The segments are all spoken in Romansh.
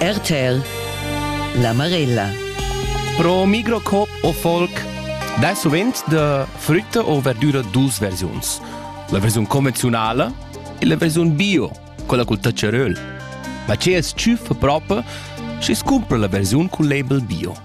RTL La Marella Pro microcop o folk dai sovent da frutta o verdura dus versiuns. La versiun convenzionale e la versiun bio, quella col tacceröl. Ma ce es tschüffa propa schi scumpra la versiun col label bio.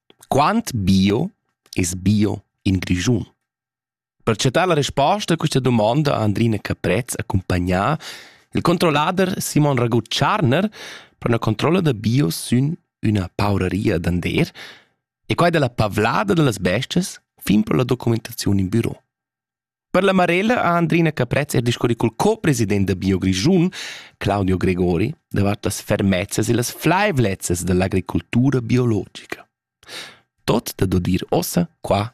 Quant bio es bio in Grischun? Per chattar la resposta a questa domanda ha Andrina Caprez accumpagnà il controllader Simon Ragut Tscharner per una controlla da bio sün üna pauraria d'ander e quai dalla pavlada da las bestias fin per la documentaziun in büro. Per la Marella ha Andrina Caprez er discurri col co-president da Bio Grischun, Claudio Gregori, davart las fermezzas e las flaivlezzas dall'agricultura biologica. Tot da dir ossa qua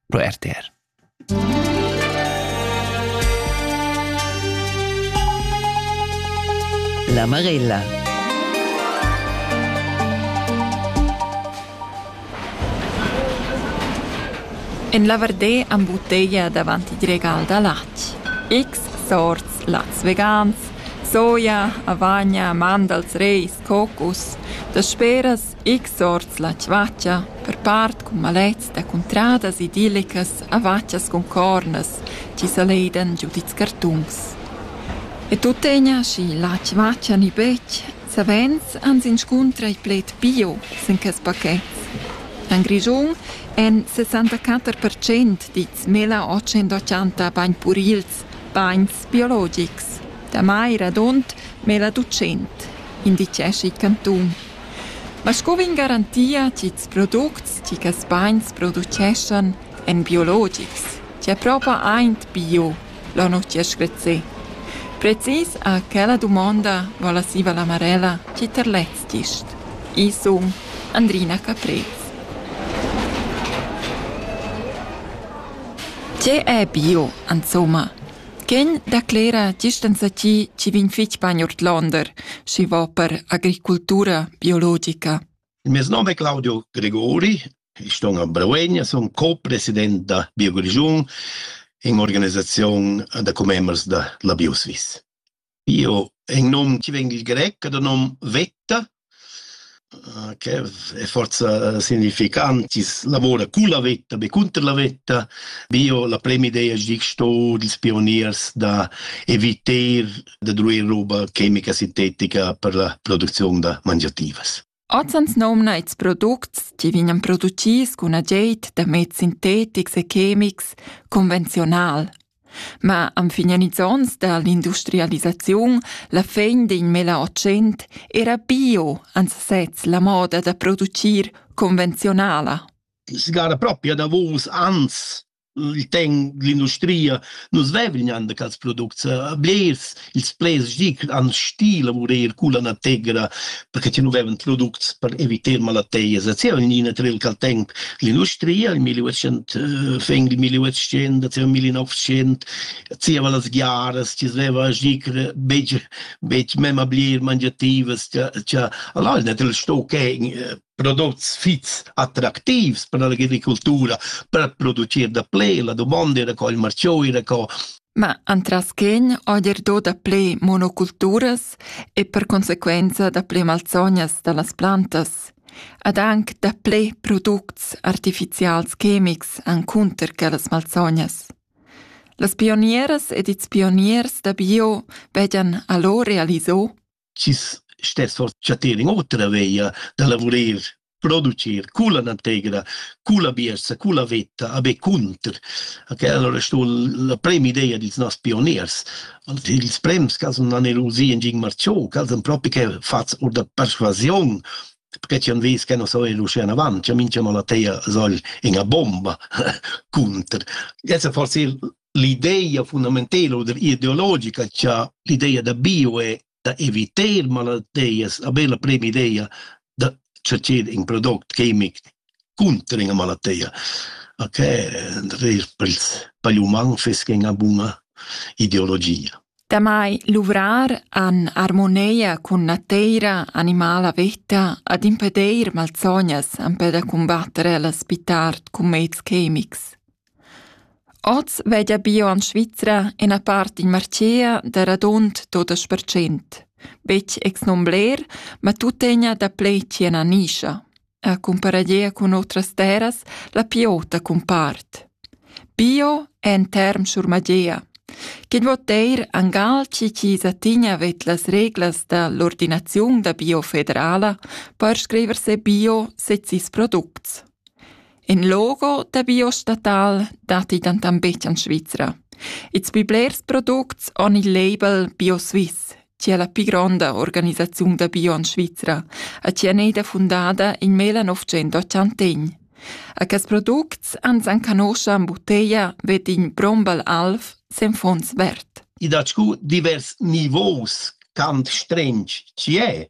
pro RTR. La Marella En la Vardais am butteglia davant il regal da latg. X sorts lats vegans, soja, avagna, mandals, reis, cocus, dasperas x sorts la tschatscha, per part cun malets da cuntradas idillicas, avatschas cun cornas, chi saleidan giu dils cartuns. E tuttegna, schi la tschatscha ni betg, Savens ans inscuntra il pled bio sin quest paquet. En Grischun èn 64 percent dits 1880 bain purils, bains biologics. Damai radund 1200, inditgescha il cantun. Ma sco vegn garantia ch'ils products che quests bains produceschan èn biologics, tge propa aint bio La notg ha screzzè. Precis a quella dumonda vala siva la Marella chi ter lez gist. Ii sun Andrina Caprez. Tge è bio, insomma? Quegn declera gist ensatgi chi vegn fich bain ordlonder, schi va per agricultura biologica. Il mes nom è Claudio Gregori, ich sto a Brewegna, sono co-president da BioGrigiun in organisazione da commembers da la BioSwiss. Io è un nom che veng il grec, da nom Vetta, eh, che è forza significantis, lavora con la vetta, be contro la vetta. Bio, la prima idea è che sto dils pioniers da eviter da druir roba chemica sintetica per la producziun da mangiativas. Oz ans nomna ils products che vegnan producits cun ageit da meds sintetics e chemics convenziunal. Ma am finian ils ons da l'industrialisaziun, la fin d'in mela ocent era bio ans sez la moda da producir convenziunala. Si gara propria da vos ans il ten l'industria nus vevlignan da quels products eh, blers ils plaids di han stil lavurer cu la nategra perché ti nu vevan products per evitar malateias et sia nina tril cal temp l'industria il 1800 eh, feng il 1800 sia 1900 sia va las giaras ti sveva gicre beg beg mema blier mangiativas tia tia allora net il sto che prodots fits attractivs per l'agricultura, per producir da ple, la domanda era co il marchio era co Ma antras quegn odir do da ple monoculturas e per conseguenza da ple malsognas da las plantas, ad anc da ple products artificials chemics encunter quellas malsognas. Las pionieras ed ils pioniers da bio vegian allora realiso chi's stess for chattir in otra veia da lavurer, producir culla nategra, culla biersa, culla vetta, a be cunter. Okay, allora sto la prema idea dils noss pioniers. Ils prems ca sun anerusi in Gin Marciò, ca sun propi che fats or da persuasiun, perché ci han vis che non so er uscire avanti, minchia la teia soll in a bomba cunter. Jetzt forse l'ideia fundamentela oder ideologica cha l'ideia da bio è da eviter malattias, a bella prima ideia da ceder in product chimic cunter ina malattia. Ok, per ils pagli uman fiss ina buna ideologia. Damai luvrar an armoneia cun nateira animala veta ad impedeir malsognas ampe da combattere las pitart cumets chemics. Oz veglia bio en Svizra ina part in martgea da radund tottas percent. Betg ex non bler, ma tuttegna daplè tien a nischa. A cumparagia cun otras terras la piota cumpart. Bio è en term schurmagea, che vo teir angal chi chiesa tigna vet las reglas da l'ordinaziun da bio federala per scriver se bio sezis products. In logo da biostatal datti dentant betg en Svizra. Ils pli blers products han il label BioSwiss, che è la pli gronda organisaziun da bio en Svizra e che è eda fundada in 1981. A quests products ans enconoscha en butteglia Wedding Brombal Alf sen Fons Wert. I dat scu divers nivos, quant strench chi è.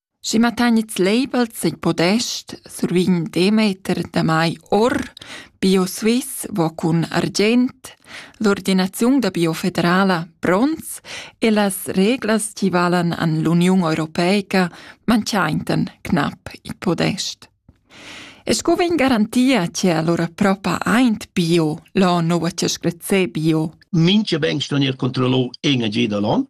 Schi ma tagnits labels in podest sur vin Demeter damai or Bio Swiss vo cun argient, l'ordinaziun da Bio federala pronts e las reglas chi valan an l'Uniun Europeica manchaintan cnap il podest. E sco vegn garantia che allora propa aint Bio l'ho nouva chescrezé Bio? Mincha ben sto gnir controllò en e giu da l'on.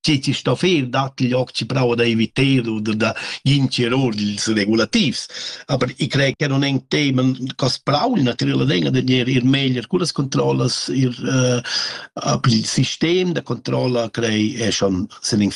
chi ti sto fer datti gli occhi bravo da eviter oder da gnir or dils regulativs. Aber ich crei che non ein temen cas brau, naturala denga de gnir ir meglier con las controllas, ir uh, a il sistem da controlla crei e schon sin in